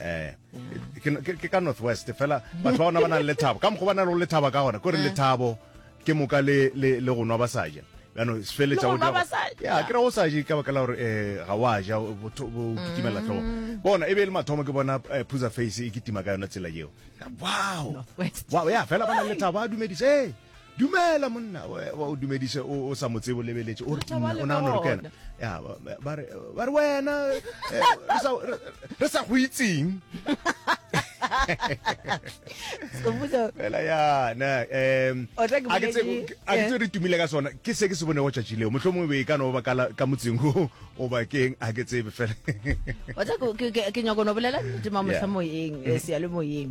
eh ke ka northwest fela batho ba bona ba nang le thabo ka mokgwa ba na le lethaba ka gona kore eh. lethabo ke moka le le le go nwa ba sa ja yaanong se feletsa o dira ya ke ra o sa je ka baka la gore um ga wa ja bo kitimela mm. tlhogo bona e be e le mathomo ke bona eh, phusa face e kitima ka yona tsela eo wow wow ya fela ba na lethabo a dumedise Dumela monna o dumedise o sa mo tsebo lebeletše o re ke nna o nagana gore kena ya ba re ba re wena eh, re sa- re- re sa go itseng Sekgopotso, fela yana um O tla ke a ke tse boledi, a ke eh. tse re tumile ka sona ke se ke se bonego tšatši leo motlho mongwe be e ka no ba ka la- ka motseng o o bakeng a ke tsebe fela o tla ke- ke- ke- ke nyako no bolela nnete ma Yeah. mohlamoyeng eh, seyalemoyeng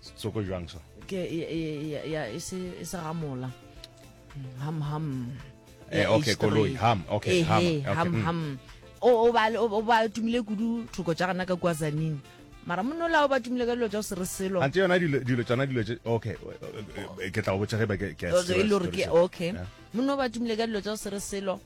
setsoko jwang so ke ya e se e se gamola ham ham eh okay koloi ham okay ham ham mm. ham o ba o ba tumile kudu thoko tša gana ka kwazanini mara monna ola o ba tumile ka dilo tša go se re selo ante yona dilo tsona dilo okay ke tla go botsa ge ba ke ke e le gore ke okay monna o ba tumile ka dilo tša go se re selo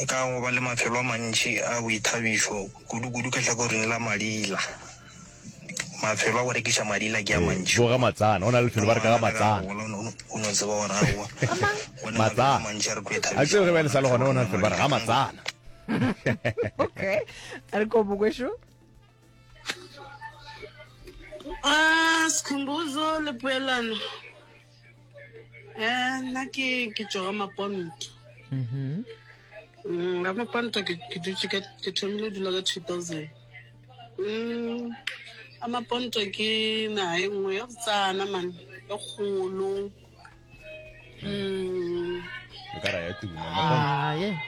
E ka go ba le mafelo a mantši a boithabišo, kudu-kudu ka hlakoring la madila. Mafelo a go rekiša madila ke a mantši. Ee, bo ga Matsana. Go na le lefelo ba re ka ga Matsana. O no tseba gore aowa, go na le mafelo a mantši a re tlo ithabiša gona. A ke tsebe ge ba e le sa le gona, go na le lefelo ba re ga Matsana. Okay. A re kobo kwešo. Sikhumbuzo le poelano. Eh, nna ke ke tšwa maponto mm-hmm. mm, ga maponto ke dutse ka ke thomile dula ka two thousand mm, a maponto ke naga e nngwe ya go tsana man e kgolo mm. e ka ra ya tuna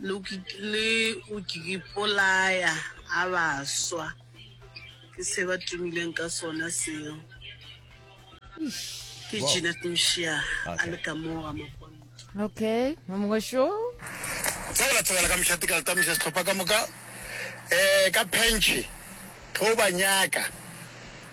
Le le go ke ipolaya ga ba swa. Ke se ba tumileng ka sona seo. Ke Wow. Jeanette Mshia a Okay. le ka moo ga Maponto. Okay, wa mongwe šo. Sa la tsebela ka mšate ka letamoša sehlopha ka moka um ka phentšhe tlo ba nyaka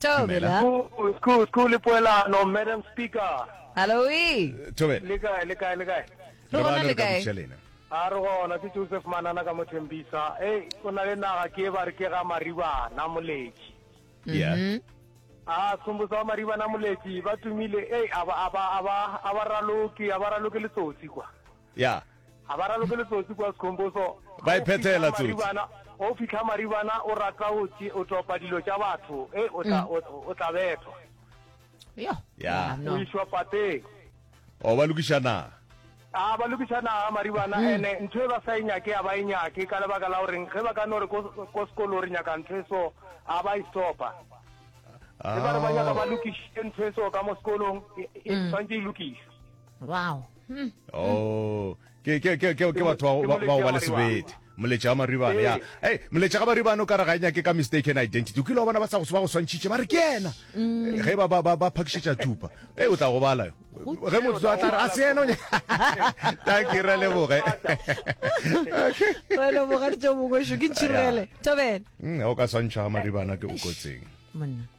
Thobela. Good, good, good le poelano, Madam Speaker. Haloe. Thobela. Le kae, le kae, le kae? Re Re ba gona le le ka kae? buša lena. A re gona ke Joseph Manana ka Mothembisa. Hey, o na le naga ke e ba re ke ga Maribana Moletši. Yeah. Ah, Sombotsa wa Maribana Moletši ba tumile. Hey, a ba a ba a ba a ba raloke, a ba raloke letsotsi kwa. Ya. Ga ba raloke letsotsi kwa Sekhomboso. Ba iphethela tsotsi. O fitlha maribana o rata o o topa dilo tša batho e o tla mm. o tla bethwa. Yo. Ya. O iswa pateng. O oh, ba lokiša naga. a ah, ba lokiša naga maribana mm. ene ntho e ba sa e nyake a ba e nyake ka lebaka la goreng ge ba ka no re ko sekolo re nyaka ntho e so a ba e stopa e ba re ba nyaka ba lokišitše ntho e so ka mo sekolong e, e mm. tshwanetse e lokisa wow hmm. oh ke ke ke ke ke batho ba ba ba le sebete moletša wa maribana ya hey moletša ga maribana o ka re ga enya ke ka mistaken identity o kile wa bona ba sa go ba go swantšhitše ba re ke ena mm. ge ba ba ba phakišetša thupa hey o tla go bala yo ge motho a tla re a se ena thank you re leboge re leboge ditšo mongwešo ke ntšhirele tobele mm, o ka swantšha ga maribana ke o kotseng monna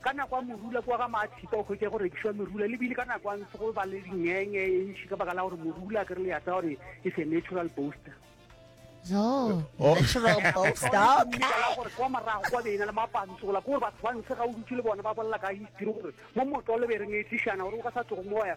Ka nako ya morula kua ga Maathipa o hwetša go rekišwa merula le bile ka nako ya ntse go ba le dingenge e ntši ka baka la gore morula ke re le ya tsa gore is a natural booster. No. Oh. Natural post. Stop. kwa morago kwa beena le mapantso gola kore batho ba ntshe ga o dutse le bona ba bolela ka history gore mo motlole be re ngetsišana gore o ka sa tlogo moya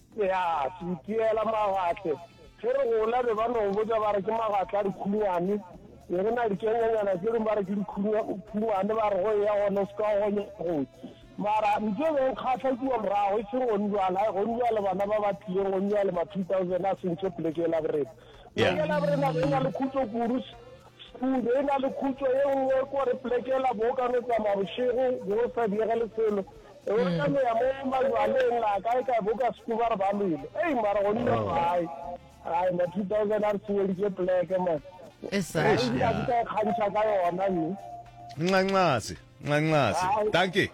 Ya, se itiela magatle. Ge re gola be ba no go botša ba re ke magatle a dikhunyane. Be re na dikenyanyana tše dingwe ba re ke dikhunyane ba re go eya gona o se ka gonya kgothi. Mara ntho e be e nkgahla kua morago e seng gonjwale, hai gonjwale bana ba ba tlileng gonjwale ma 2000 a sentše poleke yela borena. Poleke yela borena be e na le khutšo kudu, Khudu e na le khutšo ye nngwe ko re plekela bo ka no tsamaya bošego bo go sa diege le selo. E o ka no ya mo majwaleng a kae kae bo ka sekuba re ba lwele. Ei mara go nna gae. Ai ma 2000 a re seweditše pleke man. E sa. Ai nka ka e kgantšha ka yona mme. Nxanxase. nxanxase tanke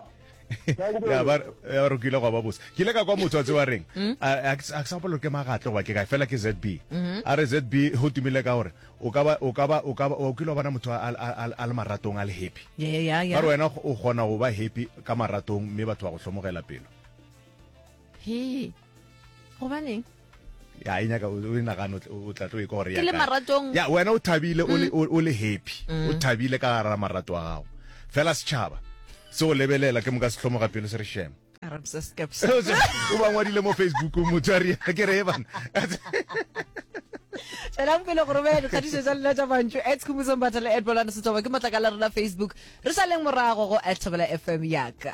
ya ba ya re kile go ba bose ke ile ka kwa motswatse wa reng hmm? a ke sa bolo ke magatle goba ke ka fela ke ZB hmm. a re ZB ho tumile ka gore o ka ba o ka ba o ka ba o kile bona motho a le maratong a le happy ya ya re wena o gona go ba happy ka maratong mme batho ba go hlomogela pelo he gobaneng ya e nyaka o e nagano o tla tlo e kore ya ke le maratong ya wena o thabile o le mm. o le happy mm. o thabile ka gara marato a gago fela setšhaba se o lebelela ke moka sehlomo ga pelo se re shema o ba ngwadile mo facebook motho a ria ke re e bana tšwelang pele go romela dikgatiso tsa lena tša bantšo ets khumosong batha le edbolane setsoba ke matlakala rona facebook re sa leng morago go at fm yaka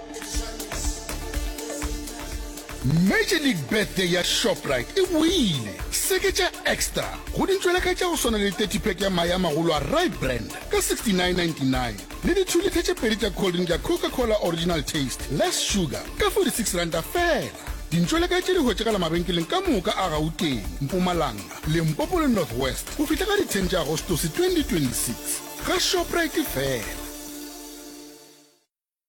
Major League Birthday ya Shoprite e boile! Seketša Extra go dintšweletha tša go swana le 30 pack ya mae a magolo a Rye Brand ka 69.99 le dithulitha tše pedi tša cold drink ya Coca-Cola Original Taste, Less Sugar ka 46 ranta feela. Dintšweletha tše di hwetšagala mabenkeleng ka moka a Gauteng, Mpumalanga, Limpopo le North West go fihla ka di 10 tša Agostose 2026. Ga Shoprite fela!